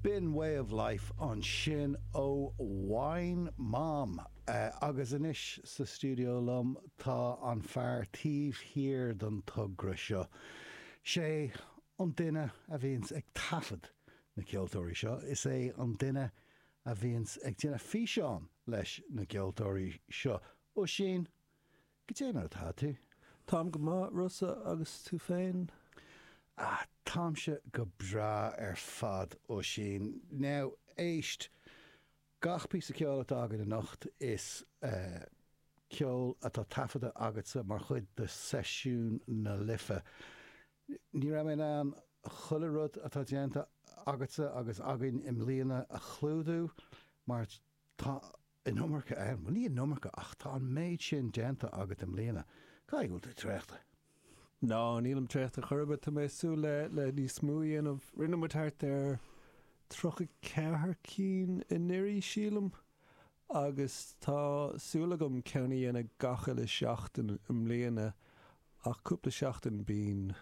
B'in Way of Life ansin ó Wine Mom. Agus anois sa stiúideo liom tá an fear taobh thiar den togra seo. Sé an duine a bhíonns ag taifead na ceoltóirí seo, is é an duine a bhíonns ag déanamh físeán leis na gceoltóirí seo. Oisín, Goidé mar atá tú? Táim go maith, Rossa, agus tú féin? Ah, táimse go breá ar fad, Oisín. Now, éist, gach píosa ceoil atá againn anocht, is eh. ceol atá taifeadta agatsa mar chuid de Sheisiúin na Life. Ní raibh mé in ann chuile rud atá déanta agatsa agus againn i mbliana a chlúdú mar tá an. An iomarca ann? Bhuel, ní hé an iomarca ach tá an méid sin déanta agat i mbliana. Caithfidh go bhfuil tú traochta. Ná, nílim traochta chor ar bith. Tá mé ag súil le níos mó a dhéanamh. Rinne muid thart ar tríocha ceathair cinn anuraidh, sílim, agus tá súil agam ceann a dhéanamh gach uile sheachtain i mbliana, ach cúpla seachtain bíonn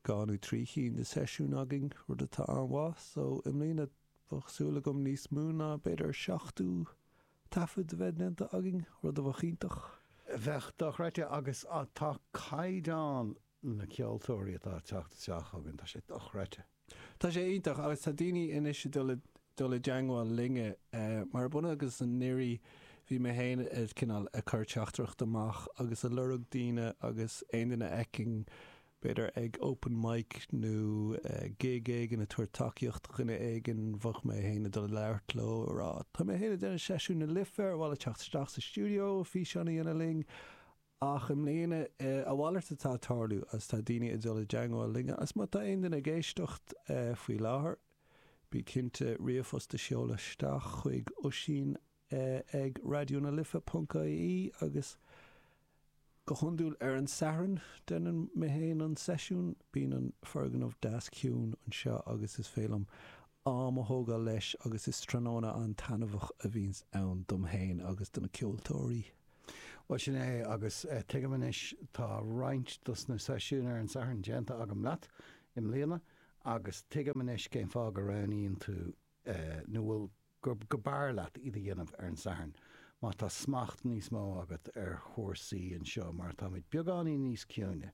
Dhá nó trí chinn de seisiúin againn, rud atá an-mhaith, so i mbliana bheadh súil agam níos mó ná b'fhéidir seachtó taifead a bheith déanta againn, rud a bheadh iontach. Bheadh dochreidte agus tá caighdeán na ceoltóirí atá ag teacht isteach chugainn, tá sé dochreidte. Tá sé iontach agus tá daoine anois ag dul i dteangmháil linne mar ab ionann agus anuraidh bhí mé féin ag cineál ag cur teachtaireacht amach agus ag lorg daoine agus aon duine a fheicfinn B'fhéidir ag open mic nó gig éigin ag tabhairt tacaíocht do dhuine éigin, bhíodh mé féin ag dul ag labhairt leo, ag rá tá mé féin ag déanamh Seisiúin na Life, ar mhaith leat teacht isteach sa stiúideo, físeán a dhéanamh linn? Ach i mbliana, a mhalairt atá ag tarlú agus tá daoine ag dul i dteangmháil linn agus má tá aon duine ag éisteacht faoi láthair, bí cinnte ríomhphost a sheoladh isteach chuig Oisín ag Raidió na Life ponc ie agus go hiondúil ar an Satharn deineann mé féin an seisiún. Bíonn an foirgneamh deas ciúin anseo agus is féidir liom am a thógáil leis agus is tráthnóna an-taitneamhach a bhíonns ann dom fhéin agus do na ceoltóirí. Bhuel sin é agus tuigim anois tá roinnt dos na seisiúin ar an Satharn déanta agam leat i mbliana agus tuigim anois cén fáth go roghnaíonn tú nó bhfuil gurbh fhearr leat iad a dhéanamh ar an Satharn má tá smacht níos mó agat ar chúrsaí anseo mar táimid beagáinín níos ciúine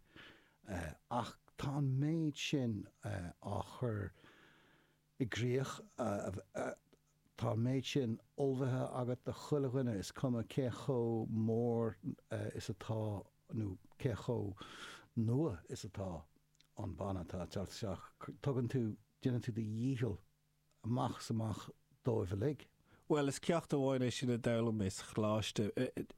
ach tá an méid sin á chur i gcrích tá an méid sin ullmhaithe agat do chuile dhuine is cuma cé chomh mór is atá nó cé chomh nua is atá an banna atá ag teacht isteach tugann tú, déanann tú do dhícheall amach is amach dóibh uilig. Bhuel, is ceacht amháin é sin a d'fhoghlaim mé sa choláiste,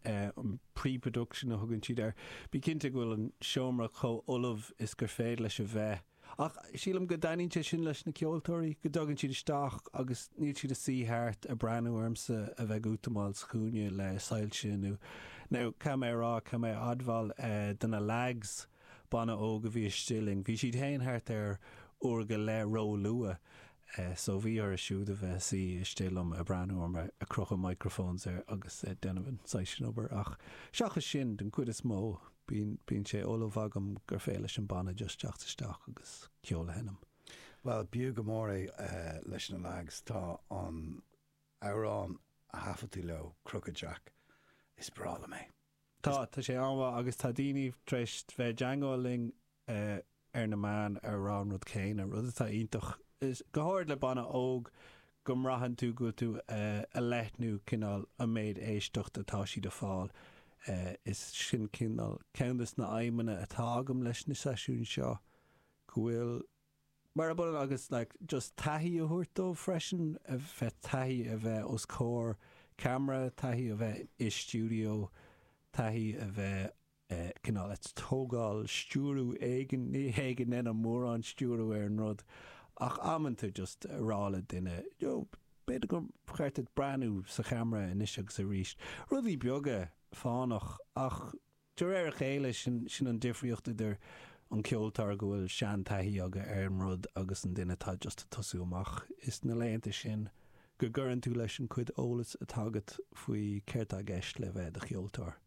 an pre-production a thugann siad air. Bí cinnte go bhfuil an seomra chomh ullamh is gur féidir leis a bheith. Ach sílim go dtaitníonn sé sin leis na ceoltóirí, go dtagann siad isteach agus níl siad a' suí thart a' breathnú ormsa a bheith ag útamáil sa chúinne le soilse nó, now, caithfidh mé a rá, caithfidh mé a admháil, do na leaids. banna óg a bhí istigh linn. Bhí siad féin thart ar uair go leith ró-luath so bhí orthu siúd a bheith suí istigh liom a' breathnú orm, a' crochadh microphones agus a' déanamh an saghas sin obair ach seachas sin, den chuid is mó, bíonn, bíonn sé ullamh agam gur féidir leis an banna just teacht isteach agus ceol a sheinm. Bhuel, b'fhiú go mór é leis na leaids, tá an amhrán a thaifeadadh tú leo, Crooked Jack, is breá liom é. Tá, tá sé an-mhaith agus tá daoine tar éis bheith i dteagmháil linn ar na meáin ag rá an rud céanna, rud atá iontach. Go háirid le banna óg go mbraitheann tú go bhfuil tú ag leathnú cineál an méid éisteacht atá siad ag fáil. Is sin cineál ceann des na aidhmeanna atá agam leis na seisiúin seo go bhfuil mar a b'ionann agus like just taithí a thabhairt dóibh freisin, a bheith taithí a bheith os comhair camera, taithí a bheith i stiúideo, taithí a bheith eh cineál ag tógáil stiúrú éigin, ní hé go ndéanaim mórán stiúrú ar an rud ach amanta just a rá le duine you know b'fhéidir gur cheart duit breathnú sa chamera anois agus arís. Rudaí beaga fánach ach. De réir a chéile, sin an difríocht idir an ceoltóir go bhfuil seantaithí aige ar an rud agus an duine atá just ag tosú amach. Is sna laethanta sin go gcuireann tú leis an chuid eolas atá agat faoi céard tá i gceist le bheith i do cheoltóir.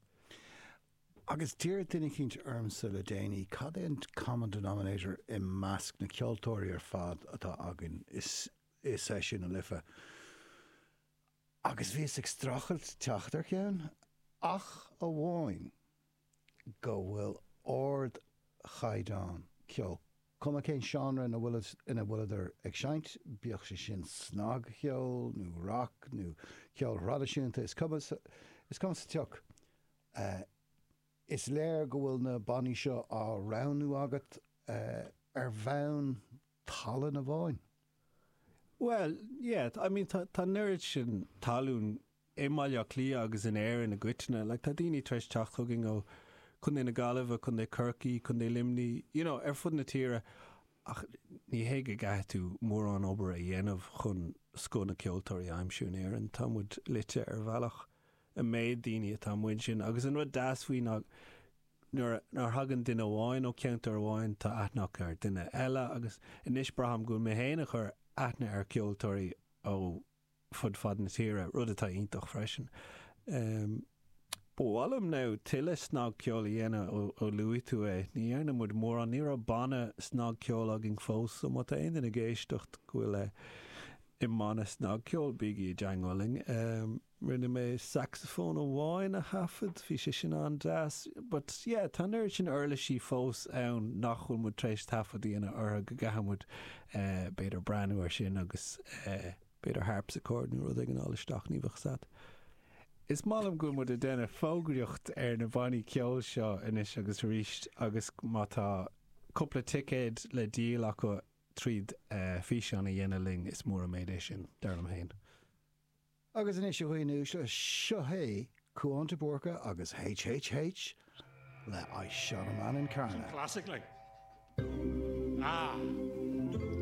Agus d'iarr duine eicínt ormsa le déanaí cad é an common denominator i measc na ceoltóirí ar fad atá againn i Seisiúin na Life. agus bhíos ag streachailt teacht ar cheann, ach amháin go bhfuil ard chaighdeán ceoil, cuma cén seánra ina bhfuileadar ag seinnt, bíodh sé sin snagcheol nó rac nó ceol traidisiúnta, is cuma, is cuma sa tsioc. Is léir go bhfuil na bannaí seo á roghnú agat ar bhonn. tallann amháin. Bhuel, yeah, I mean tá an oiread sin tallann i mBaile Átha Cliath agus in Éirinn i gcoitinne, like tá daoine tar éis teacht chugainn ó Chontae na Gaillimhe, Contae Chorcaí, Contae Luimní, you know, ar fud na tíre ach ní hé go gcaithfidh tú mórán obair a dhéanamh chun scoth na gceoltóirí a aimsiú in Éirinn, tá muid loite ar bhealach, an méid daoine atá amuigh ansin agus an rud deas faoi ná go. Nuair a thagann duine amháin ó cheantar amháin tá aithne acu ar dhuine eile agus anois braithim go bhfuil mé féin ag cur aithne ar cheoltóirí ó fud fad na tíre, rud atá iontach freisin. Ba mhaith liom now tuilleadh snagcheoil a dhéanamh ó luaigh tú é. Ní dhearna muid mórán, ní raibh banna snagcheoil againn fós so má tá aon duine ag éisteacht go bhfuil i mbanna snagcheoil bígí i dteangmháil linn. Rinne mé sacsafón amháin a thaifead, bhí sé sin an-deas. But yeah, tá an oiread sin uirlisí fós ann nach bhfuil muid tar éis taifead a dhéanamh orthu go gcaithfidh muid b'fhéidir breathnú air sin agus b'fhéidir harpsichord nó rud éigin a fháil isteach, ní bheadh 's a'd. Is maith liom go bhfuil muid ag déanamh fógraíocht ar na bannaí ceoil seo anois agus arís agus má tá cúpla ticéad le díol acu tríd físeán a dhéanamh linn, is mór an méid é sin, dar liom fhéin. Agus anois, a dhaoine uaisle, seo hé Cuan de Búrca agus HHH le I Shot a Man in Carna. Some classic like. Ah.